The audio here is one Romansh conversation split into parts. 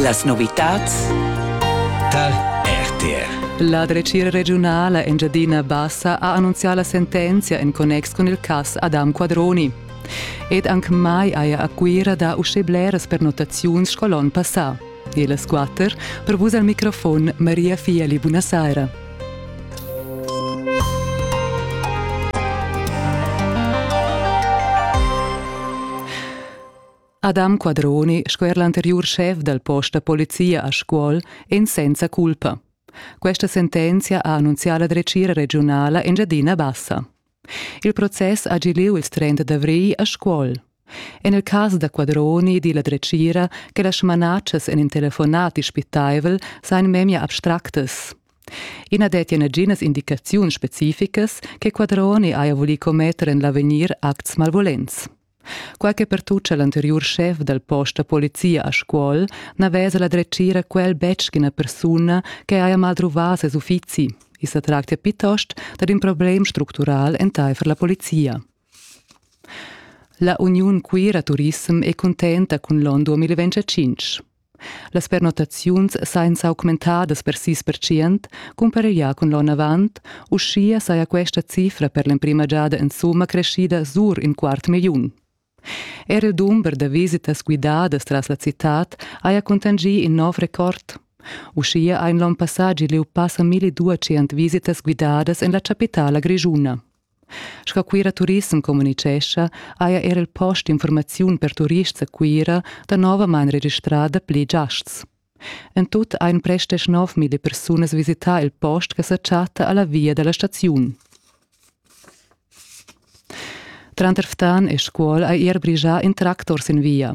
Las novitads tar RTR. La dretgira regiunala Engiadina Bassa ha annunzià la sentenzia en connex cun il cass Adam Quadroni. Ed anc mai haja a Cuira dà uschè bleras pernottaziuns sco l'onn passà. E las quatter per vus al microfon Maria Fieli. Buonasera. Adam Quadroni sco er l'anteriur schef dal post da polizia a Scuol en senza culpa. Questa sentenzia ha annunzià la dretgira regiunala Engiadina Bassa. Il process ha gi lieu il 30 d'avrigl a Scuol. En il cas da Quadroni di la dretgira che las smanatschas en in telefonat dispitaivel sain memia abstractas. I na dettia naginas indicaziuns specificas che Quadroni haja vulì commetter en l'avegnir acts malvolents. Quai che pertuccha l'anteriur schef dal post da polizia a Scuol n'aveva la dretgira quel betg ina persuna che haja maltruvà ses uffizi. I sa tractia piuttost dad in problem structural entaifer la polizia. La Uniun queera Turissem è cuntenta cun l'onn 2025. Las pernottaziuns sajan s'augmentadas per sis percent cumpareglià cun l'onn avant, uschia saja questa cifra per l'emprima giada insumma creschida sur in quart milliun. Er il dumber da visitas guidadas tras la citad haja cuntanschì in nov record. Uschia ha in l'onn passà giu passa 1200 visitas guidadas en la chapitala grischuna. Sco Cuira Turissem communitgescha haja era il post d'informaziun per turists a Cuira danovamain registrà dapli giasts. En tut ein prestes 9.000 persunas visità il post che sa chatta alla via dalla staziun. Tranter Ftan e Scuol ha er brigià in tractor sin via.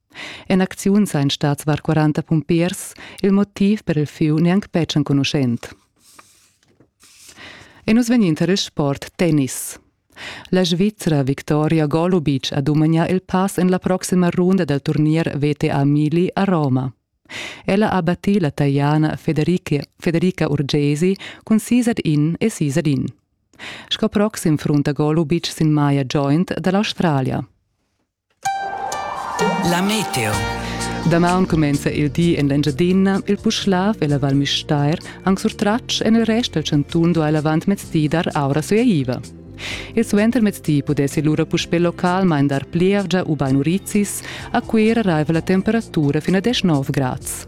En acziun sa in stat var 40 pumpiers, il motiv per il fiu neanc betg enconuschent. E nus vegnin tar il sport tennis. La Svizra Victoria Golubic ha dumagnà il pass en la proxima runda dal turnier VTA Mili a Roma. Ella ha battì la Taiana Federica, Federica Urgesi cun sis ad in e sis ad in. Sco proxim frunta Golubic sin maia joint da l'Australia. La meteo. Damaun cumenza il di en l'Engiadina, il Puschlav e la Val Müstair, anc surtratg en il rest dal chantun duai l'avantmezdi dar aura sueiva. Il suentermezdi pudessi lura puspè localmain dar plievgia ubain urizis, a Cuira raiva la temperatura fino a 19 grads.